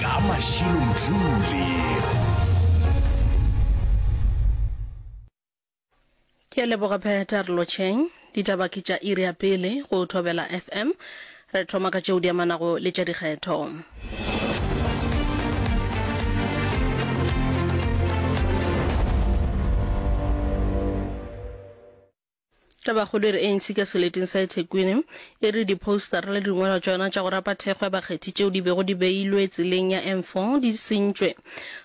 Ka Mashilo-Ntuli. Ke a leboga Pheta Rlocheng. Ditaba ke tša iri ya pele go Thobela FM. Re thoma ka tšeo di amanago le tša dikgetho. Tabakgolo e re ANC ka seleteng sa eThekwini e re diphousetara le dingwalwa tša yona tša go rapa thekgo ya bakgethi tšeo di bego di beilwe tseleng ya N4 di sentšwe.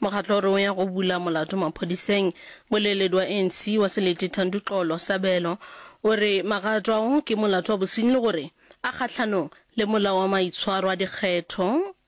Mokgatlo o re o ya go bula molato maphodiseng. Moleeledi wa ANC wa Selete Thandi Xolo, Sabelo, o re magato ao ke molato wa bosenyi le gore a kgahlanong le molao wa maitshwaro a dikgetho.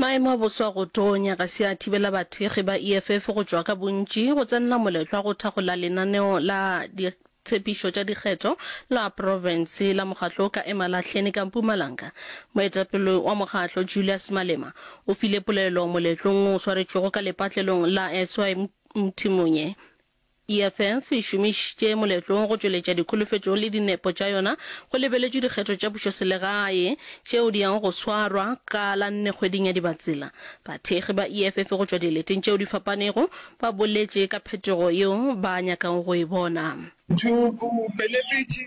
Maemo a boso a go tonya ga se a thibela bathekgi ba EFF go tšwa ka bontši go tsenela moletlo wa go thakgola lenaneo la ditshepišo tša dikgetho la profense la mokgatlo wo ka Emalahleni ka Mpumalanga. Moetapele wa mokgatlo, Julius Malema, o file polelo moletlong wo o swaretšwego ka lepatlelong la SY Mthimonyeh. EFF e šomišitše moletlo go tšweletša dikholofetšo le dinepo tša yona go lebeletšwe dikgetho tša pušoselegae tšeo di yago go swarwa ka la nne kgweding ya Dibatsela. Bathekgi ba EFF go tšwa dileteng tšeo di fapanego ba boletše ka phetogo yeo ba nyakago go e bona. Thoko, Beleletše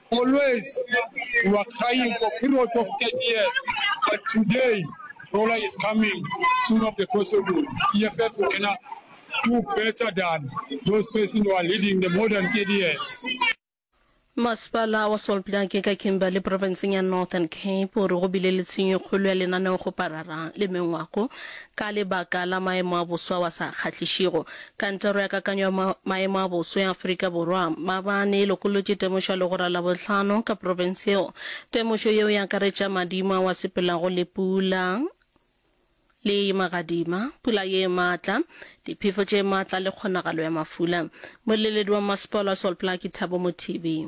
Always we were crying for period of 30 years but today Rola is coming soon of the possible EFF will kena do better than those person who are leading the more than 30 years. Masepala wa Solblake ka Kimberley profenseng ya Northern Cape o re go bile le tshenyo e kgolo ya lenaneo go parara le mengwako Ka lebaka la maemo a boso ao a sa kgahlišego, Kantoro ya Kakanyo ya Maemo a Boso ya Afrika Borwa, maabane, e lokolotše temošo ya legora Labohlano ka profense yeo. Temošo yeo e akaretša madimo ao a sepelago le pula le magadima, pula ye maatla, diphefo tše maatla le kgonagalo ya mafula. Moeleledi wa mmasepala wa Sol Plaatje, Thabo Mothibi.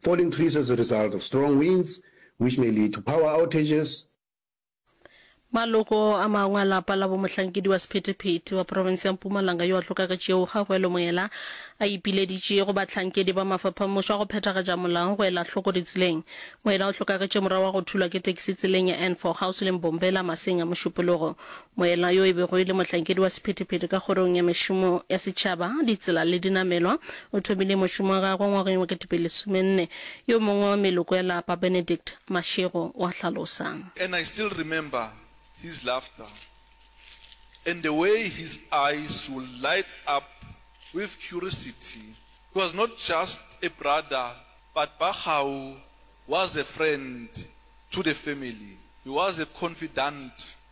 Falling trees as a result of strong winds which may lead to power outages. Maloko a mangwe a lapa la bomohlankedi wa sephethephethe wa profense ya Mpumalanga yo a hloka ka tšeo ga go elwe moela a ipileditše go bahlankedi ba mafaphamušo a go phethagatša molao go ela hloko ditseleng. Moela o hlokagetše morago ga go thulwa ke tekisi tseleng ya N4 kgauswi le Mbombela maseng a Mošupologo Moela yo e bego e le mohlankedi wa sephethephethe ka Kgorong ya Mešomo ya Setšhaba, Ditsela le Dinamelwa, o thomile mošomo wa gagwe ngwageng wa ketepelesomenne. Yo mongwe wa meloko ya lapa, Benedict Mashego, o a hlalosa. And I still remember his laughter and the way his eyes would light up with curiousity. He was not just a brother but Bakgau was a friend to the family. He was a confidant.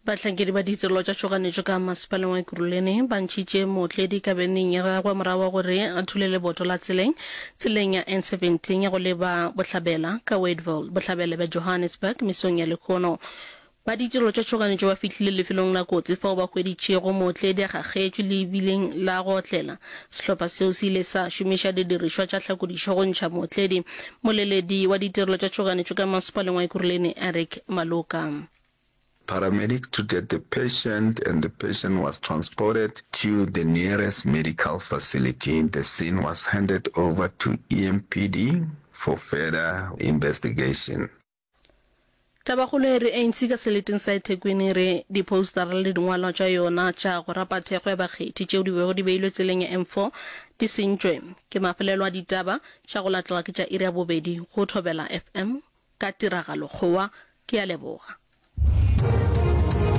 Bahlankedi ba ditirelo tša tšhoganetšo ka masepaleng wa Ekurhuleni ba ntšhitše mootledi ka beneng ya gagwe morago ga gore a thule leboto la tseleng tseleng ya N17 ya go leba Bohlabela ka Wadeville, Bohlabela bja Johannesburg, mesong ya lekhono. Ba ditirelo tša tšhoganetšo ba fihlile lefelong la kotsi fao ba hweditšego mootledi a gagetšwe lebileng la go otlela. Sehlopha seo se ile sa šomiša didirišwa tša hlakodišo go ntšha mootledi, moleledi wa ditirelo tša tšhoganetšo ka masepaleng wa Ekurhuleni, Eric Maloka. Paramedic treated the patient and the patient was transported to the nearest medical facility. The scene was handed over to EMPD for further investigation. Tabakgolo e re ANC ka seleteng sa eThekwini e re diphoustara le dingwalwa tša yona tša go rapa thekgo ya bakgethi tšeo di bego di beilwe tseleng ya N4 di sentšwe ke mafelelo a ditaba tša go latela ke tša iri ya bobedi go Thobela FM. ka tiragalokgowa. Ke a leboga.